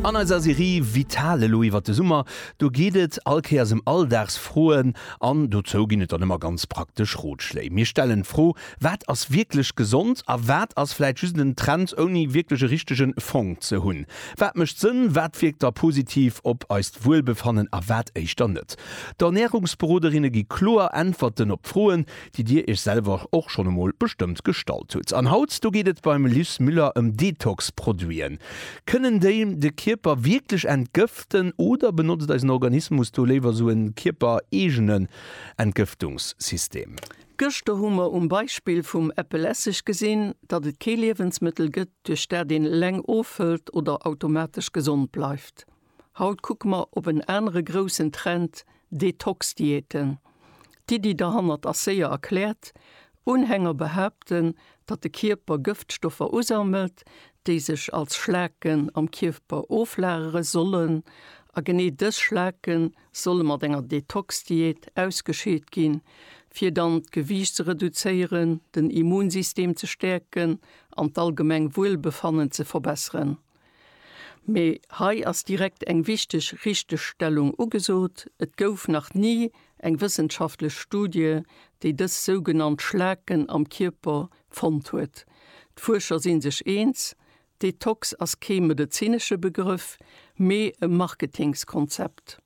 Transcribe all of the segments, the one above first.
An eiser Serie Vital elo iwwert de Summer, do geet et all Kéiers ëm Alldagsfroen an dozou ginn et dann ëmmer ganz praktesch Rotschléi. Mir stellen d'Fro, Wat ass wierklech gesond a wat ass vläit just en Trend ouni wierklech e richtege Fong ze hunn? Wat mécht Sënn, wat wierkt da positiv op eist Wuelbefannen a wat éischter net? D'Ernärungsberoderinne gi kloer Äntwerten op d'Froen, déi dir iech selwer och schonn emol bestëmmt gestallt hutt. An haut do geet et beim Luce Müller ëm Detox-Produiten. Kënnen déi de Kierper wierklech entgëften oder benotzt eisen Organismus do léiwer sou e kierpereegenen Entgëftungssystem? Gëschter hu mer um Beispill vum Äppelesseg gesinn, datt et kee Liewensmëttel gëtt, duerch dat een eleng ofhëlt oder automatesch gesond bleift. Haut kucke mer op en anere groussen Trend, Detox-Diäten. D'Iddi derhannert ass séier erkläert, Unhänger behaapten, datt de Kierper Gëftstoffer usammelt, déi sech als Schlaken am Kierper oflagere sollen. A genee dës Schlake solle mat enger Detox-Diät ausgescheet ginn, fir dann d'Gewiicht ze reduzéieren, den Immunsystem ze stäerken an d'allgemeng Wuelbefannen ze verbesseren. Mee hei ass direkt eng wichteg Richtegstellung ugesot, Et gouf nach ni eng wëssenschaftlech Studie, déi dës sougenannt Schlaken am Kierper fonnt huet. D'Fuerscher si sech eens, Detox ass kee medezinesche Begrëff, mee e Marketingskonzept.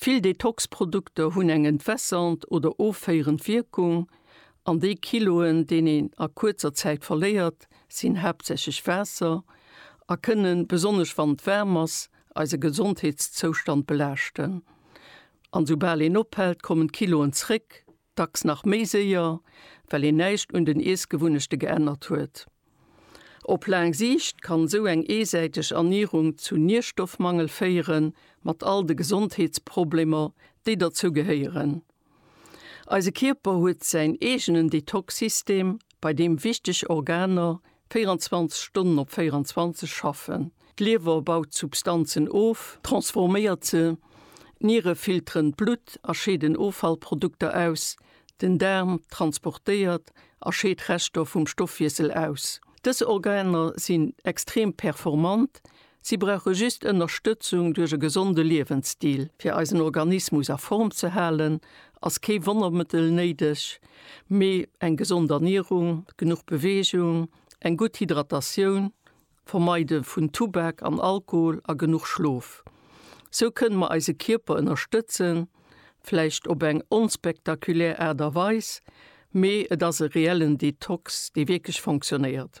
Vill Detox-Produkter hunn eng entwässernd oder offéierend Wierkung, an déi Kiloen, deen een a kuerzer Zäit verléiert, sinn haaptsächlech Waasser a kënnen, besonnesch wann et waarm ass, eise Gesondheetszoustand belaaschten. An soubal een ophält, kommen d'Kiloen zréck, Dacks nach méi séier, well een näischt un den Iessgewunnechte geännert huet. Op laang Siicht kann esou eng eesäiteg Ernierung zu Nierstoffmangel féieren, mat all de Gesondheetsproblemer, déi derzou gehéieren. Eise Kierper huet säin eegenen Detox-System, bei deem wichteg Organer 24 Stonnen op 24 schaffen. D'Liewer baut Substanzen of, transforméiert se, d'Niere filteren d'Blutt a scheeden Offallprodukter aus, den Daarm transportéiert a scheet Reschter vum Stoffwiessel aus. Dës Organer sinn extrem performant, Si brauche just Ënnerstëtzung duerch e gesonde Liewensstil. Fir eisen Organismus a Form ze halen, ass kee Wonnermëttel néideg, mee eng gesond Ernierung, genuch Beweegung, eng gutt Hydratatioun, Vermeide vun Tubak an Alkohol a genuch Schlof. Sou kënne mer eise Kierper ënnerstëtzen, vläicht op eng onspektakulär Aart a Weis, mee et ass e reellen Detox, dee wierklech fonctionéiert.